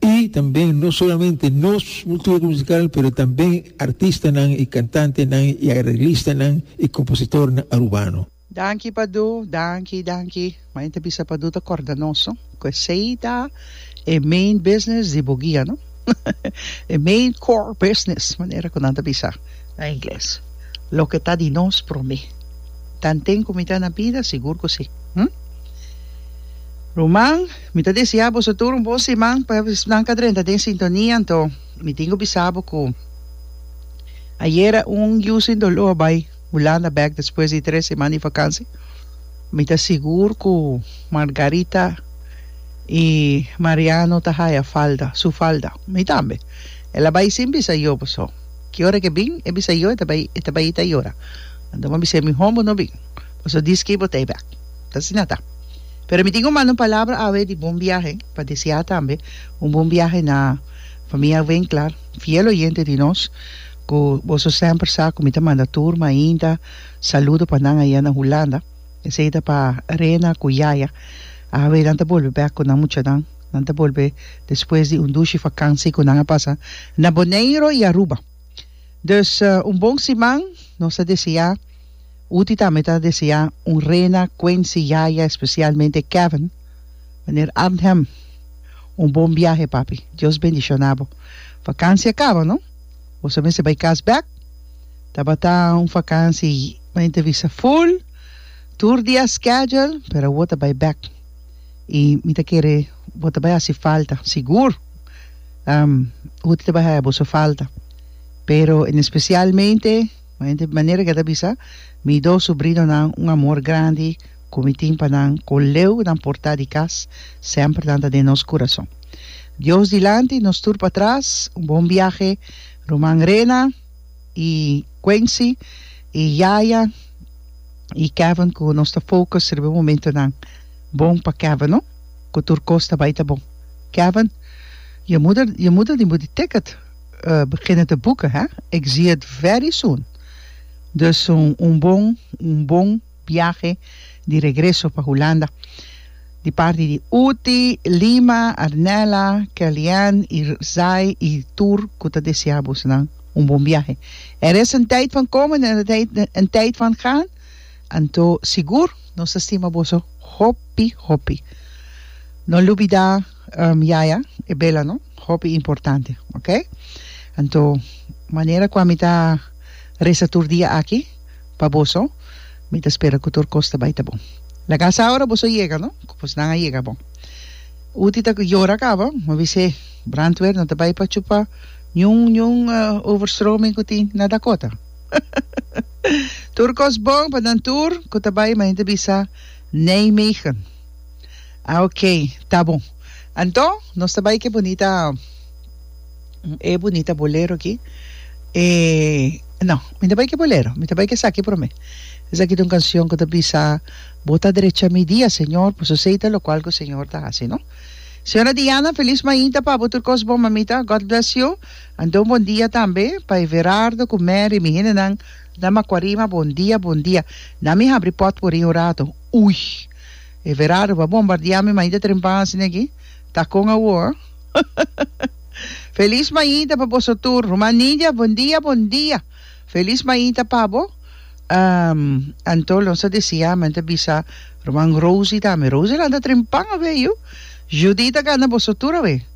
Y tambe no solamente nos cultura musical pero tambe artistanan y cantantenan y arreglistanan y compositornan Arubano. Danki Padu, danki, danki. Ma enta bisa Padu ta corda nos no. Cu esey ta e main business di Bogia no. E main core business manera cu nan ta bisa na Ingles. Loke ta di nos prome. Tanten cu mi ta na bida sigur cu si. Hm. Ruman. Mi ta deseá boso tur un bon siman. Pa esnan ka drenta den sintonia, anto mi tin ku bisa bo ku ayera un yu sin doló a bai Hulanda bèk despues di tres siman di vakansi. Mi ta sigur ku Margarita i Mariano ta haya falta, su falta. Mi tambe. El a bai sin bisa yo boso. Ki ora ke bin e bisa yo e ta bai, e ta bai ta yora. Anto mi a bis'é mihó bo no bin. Boso di ski bo ta e bèk. ta asina ta. Pero mi tin cu manda un palabra awe di bon biahe pa deseá tambe un bon biahe na famia Winkler, fiel oyente di nos cu boso semper sa cu mi ta manda tur mainta saludo pa nan aya na Hulanda. Esey ta pa Rena cu Yaya. Awe nan ta bolbe bek cu nan muchanan. Nan ta bolbe despues di un dushi vakansi cu nan a pasa na Boneiro y Aruba. Dus un bon siman nos ta deseá Uti tambe ta deseá un rena Quency yaya especialmente Kevin meneer Arnhem un bon biahe papi Dios bendicionabo vakansia kaba no boso mester bai kas bek tabata un vakansi entrevista full tur dia schedule pero awor ta bai bek y mi ta kere bo ta bai hasi falta sigur. Hoed lo baha boso falta pero en especialmente de manera ke ta bisa mi dos sobrinonan un amor grandi ku mi tin pa nan ku leu nan por ta di kas semper nan ta den nos kurason Dios dilanti nos tur patras un bon biahe ruman Rena i Quency i yaya i Kevin ku nos ta focus riba e momentonan bon pa Kevin no. ku tur kos ta bai ta bon. Kevin, Your moeder, your moeder die moet die ticket beginnen te boeken hè, ik zie het very soon. Dus un bon un bon biahe di regreso pa Hulanda di parti di Uti, Lima, Arnella, Kelly-Ann, Irzai i tur ku ta desea boesanan un bon biahe. Er is een tijd van komen en er is een tijd van gaan. Anto sigur nos ta stima boso hopi hopi. No lubida yaya e bela no hopi importante ok anto manera cu ami ta resa tur dia aki pa boso mi ta spera cu tur cos ta bay ta bon laga sa ora boso yega no cu pues nan a yega bon Uti ta yora caba mi a bise Brantwer no ta bay pa chupa niun niun overstroming cu tin na Dakota. Tur kos bon pa nan tur ku ta bai, imagina ta bisa Nijmegen. Ok, ta bon. Anton, nos ta bai ku e bunita e bunita bolero aki. E, no, mi ta bai ku e bolero, mi ta bai ku esaki promé. Esaki ta un kanshon ku ta bisa, Bo ta drecha mi dia, Señor, paso esei ta lokual ku Señor ta hasi, no? Señora Diana, felis mainta pa bo, tur kos bon, mamita. God bless you. Anto un bon dia tambe pa Everardo cu Mary mi hendenan na Macuarima bon dia bon dia na mi habri pot por ri un rato ui Everardo bo a bombardia mi maita trempa asina aki ta con awo feliz maita pa boso tur Ruma Nidia bon dia bon dia feliz maita pa bo anto lo sa desia men ta bisa Ruman Rosy tambe Rosy lanta trempa awe yu Judy ta gana boso tur awe.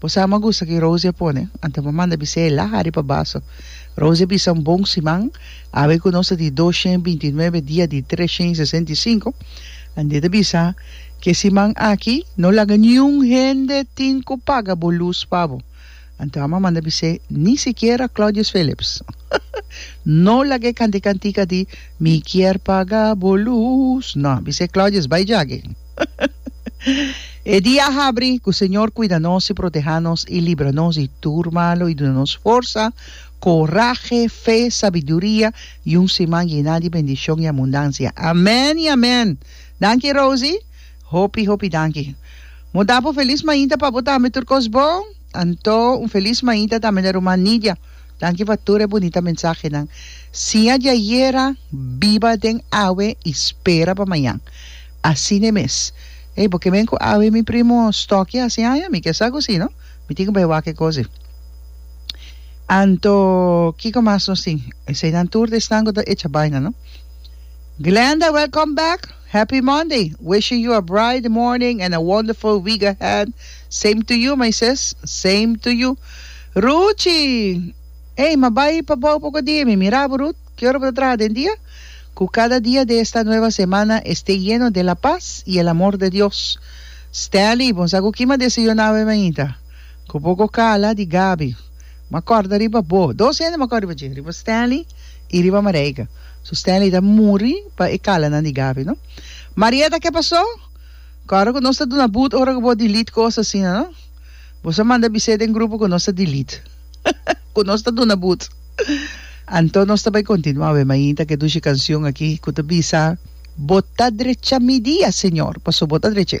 Bo sa ama gusta ki Rosie a pone? Anto bo manda bisa e laha riba baso. Rosie a bisa un bon siman, Awe ku nos ta di dos shen binti i nuebe dia di tres shen i sesenta i sinku, Andie ta bisa, Ke siman aki, no laga niun hende tin ku paga bo lus pa bo. Anto ama a manda bis'é, Ni sikiera Claudius Phillips. No laga e kanti kantika di Mi kier paga bo lus. No, bis'é Claudius, bai jage. E dia a habri cu Señor cuida nos y proteha nos y libra nos di tur malo y duna nos forsa, corahe, fe, sabiduria y un siman yena di bendicion y abundancia. Amen y amen! Danki Rosie. Hopi hopi danki. Bo ta bo feliz mainta pa bo tambe tur cos bon. Anto un feliz mainta tambe na ruman Nidia. Danki pa tur e bunita mensahenan. Siña di ayera biba den awe y spera pa mañan. Asina e mes. Ey, bo ke ben ku awe mi primo Stocky hasi aña? Mi ke sa ku si, no? Mi tin ku bai wak e kosi. Anto, kiko mas nos tin? Eseinan tur di esnan ku ta echa baina, no? Glenda, welcome back! Happy Monday! Wishing you a bright morning and a wonderful week ahead. Same to you, my sis. Same to you. Ruchi, Ey, ma bai pa bou poko dia. Mi mira bo, Ruth. Ki ora bo ta traha den dia? Ku kada dia di esta nueva semana este yeno di la pas i el amor di Dios. Stanley, Bo no sa ku kima desayuná awe mainta? Ku poko kala di Gabi. M'a kòrda riba bo. Dos hende m'a kòrda riba dje, riba Stanley i riba Marijke. So Stanley ta muri pa e kalanan di Gabi, no? Marietta, Ke pasó? Ku ora ku nos ta duna but ora ku bo delete kos asina, no? Bo sa manda bisé den grupo ku nos ta delete. ku nos ta duna but. Anto nos ta bai kontinuá wè mainta ku e dushi kanshon aki ku ta bisa, Bo ta drechá mi dia, Señor, pasobra Bo ta drech'é.